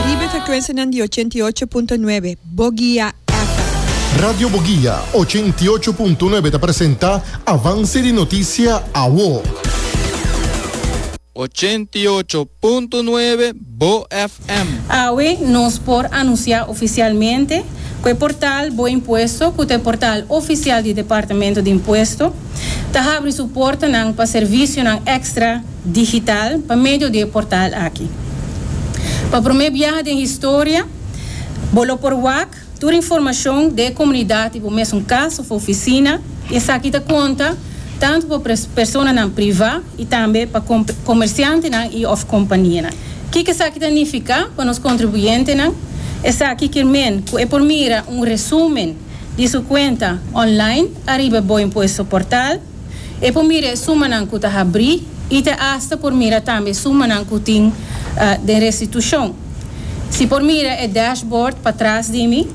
Riba e frekuensianan di ochenta i ocho punto nuebe Bogia FM. Radio Bogia ochenta i ocho punto nuebe ta presenta Avance di Noticia Awo. Ochenta i ocho punto nuebe Bo FM. Awe nos por anuncia oficialmente cu e portal Bo Impuesto, cu ta e portal oficial di Departamento di Impuesto, ta habri su portanan pa servicionan extra. digital pa medio di e portal aki. Pa promé biaha den historia, bo lo por wak tur informashon di e komunidat di bo mesun kas òf ofisina i esaki ta konta tantu pa personanan privá i tambe pa komersiantenan i òf kompanianan. Kiko esaki ta nifiká pa nos kontribuyentenan? Esaki kier men ku e por mira un resúmen di su kuenta online ariba e boimpuesto portal. E por mira e sumanan ku ta habrí i ta asta por mira tambe e sumanan ku tin den restitushon. Si por mira e dashbord patras di mi,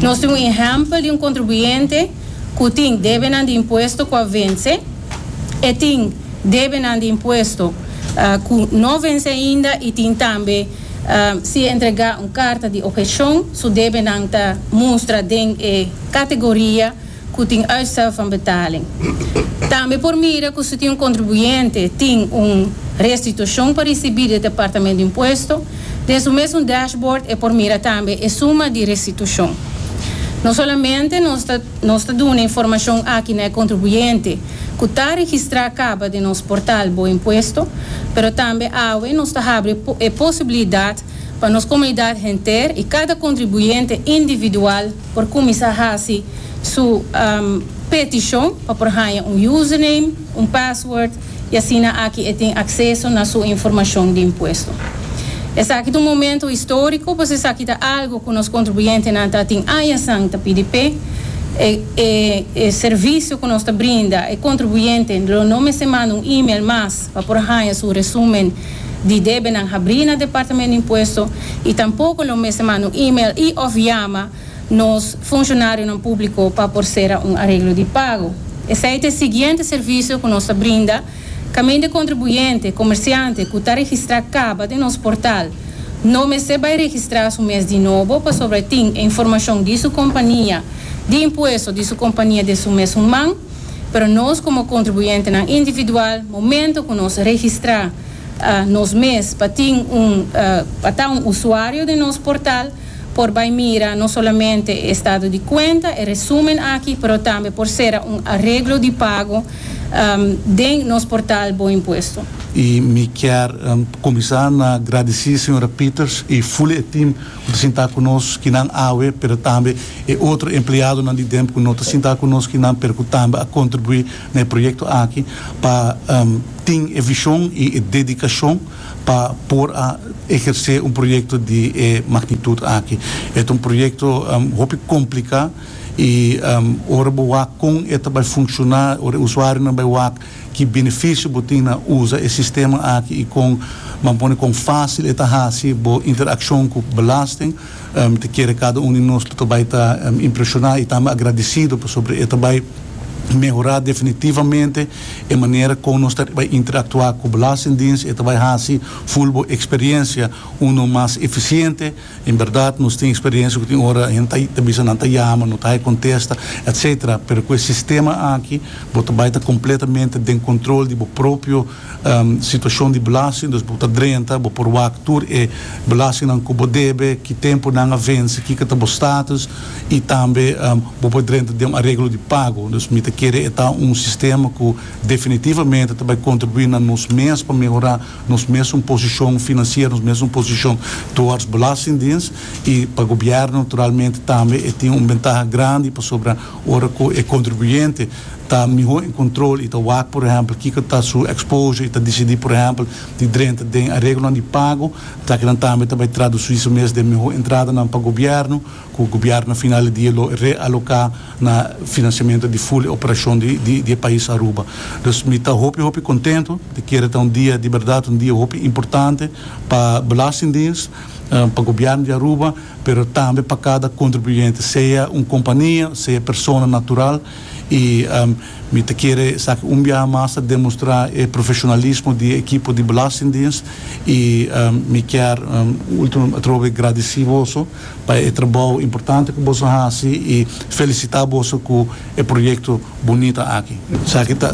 nos tin un ehèmpel di un kontribuyente ku tin debenan di impuesto ku a vense, e tin debenan di impuesto ku no vense ainda i tin tambe si e entregá un karta di opheshon su debenan ta mustra den e kategoria cu tin uitstel van betaling. Tambe por mira cu si tin un contribuyente tin un restitucion pa ricibi di e Departamento di Impuesto, den su mes un dashboard e por mira tambe e suma di restitucion. No solamente nos ta nos ta duna informacion aki na e contribuyente cu ta registra caba den nos portal Bo Impuesto, pero tambe awe nos ta habri e posibilidad pa nos comunidad henter y cada contribuyente individual, por cuminsa haci su peticion pa por haya un username, un password y asina aki e tin acceso na su informacion di impuesto. Esaki ta un momento historico pues esaki ta algo cu nos contribuyentenan ta tin añasan ta pidi p'e. E servicio cu nos ta brinda e contribuyente lo no mester manda un email mas. pa por haña su resumen di debenan habrí na Departamento di Impuesto i tampoco lo mester manda un email i of yama nos funcionarionan público pa por sera un areglo di pago. Esei ta e siguiente servicio cu nos ta brinda caminda contribuyente, comerciante, cu ta registra caba den nos portal no mester bay registra su mes di nobo pasobra e tin e informacion di su compania di impuesto di su compania den su mes un man. pero nos komo kontribuyentenan individual momento ku nos registrá nos mes pa tin un pa ta un usuario den nos portal por bai mira no solamente e estado di kuenta e resumen aki pero tambe por sera un areglo di pago den nos portal BoImpuesto. I mi kier kuminsá na gradisí señora Peters i Fuli e tim. Ku ta sintá ku nos kinan awe, pero tambe e otro empleadonan di Demp ku no ta sintá ku nos kinan, pero ku tambe a kontribuí na e proyekto aki pa tin e vishon i e dedikashon pa por a ehersé un proyekto di e magnitut aki. E ta un proyekto hopi kompliká i ora bo wak kon e ta bai funshoná, ora e usuarionan bai wak, Ki benefisio bo tin na usa e sistema aki i kon ban pone kon fásil e ta hasi bo interakshon ku belasting? Mi ta kere kada un di nos lo ta bai ta impreshoná i tambe agradisido pasobra e ta bai mehorá definitivamente e manera kon nos ta bai interaktuá ku Belastingdiens. E ta bai hasi full bo eksperiensia unu mas efisiente. En berdad nos tin experiencia cu tin ora hende ta bisa nan ta yama, no ta hay contesta, etc. Pero cu e sistema aki bo ta bay ta completamente den control di bo propio situacion di belasting, dus bo ta drenta, bo por wak tur e belastingnan cu bo debe, ki tempo nan a venci, kiko ta bo status y tambe bo por drenta den un areglo di pago. Dus mi ta kere e ta un sistema cu definitivamente ta bay contribui na nos mes pa mehora. nos mesun posishon finansiero, nos mesun posishon towards belastingdiens i pa gobièrnu naturalmente tambe e tin un bentaha grandi pasobra ora ku e kontribuyente ta mihó en kontrol i ta wak por ehèmpel kiko ta su exposure i ta disidí por ehèmpel di drenta den areglonan di pago, ta kinan tambe ta bai tradusí su mes den mihó entradanan pa gobièrnu. ku gobièrnu final di dia lo realoká na finansiamentu di ful e operashon di e pais Aruba. Dus mi ta hopi hopi kontentu, ta kere ta un dia di bèrdat, un dia hopi importante pa Belastingdiens, pa gobièrnu di Aruba, pero tambe pa kada kontribuyente, sea un kompania, sea persona natural, i mi ta kere esaki un biaha mas ta demostrá e profeshonalismo di e ekipo di Belastingdiens, i mi kier último atrobe gradisí boso. pa e trabou importante ku boso hasi i felisitá boso ku e proyekto bunita aki. Esaki ta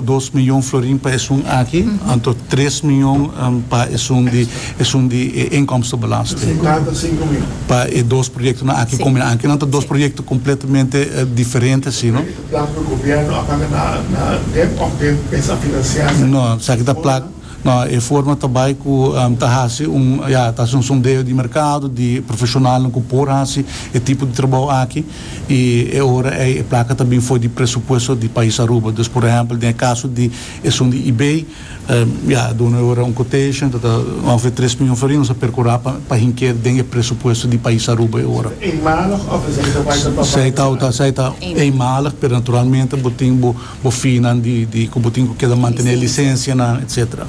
dos mion florin pa esun aki, anto tres mion pa esun di esun di e inkomstebelasting. Pa e dos proyektonan aki kombinando, kinan ta dos proyekto kompletamente diferente asi, no? Esaki ta plak. No, e forma ta bai ku ta hasi un, ya, ta hasi un sondeo di merkado di profeshonalnan ku por hasi e tipo di trabou aki i e ora ei e plaka ta bin for di presupuesto di pais Aruba. Dus por ehèmpel den e kaso di esun di Ebay, ya, a duna e ora un quotation ta ta ongefè tres mion forier, nos a perkurá pa pa hink'é den e presupuesto di pais Aruba e ora. Eenmalig of esei ta bai ta tòp? Esei ta esei ta eenmalig, pero naturalmente bo tin bo. bofinnan di ku bo tin ku keda mantené lisensianan etcétera.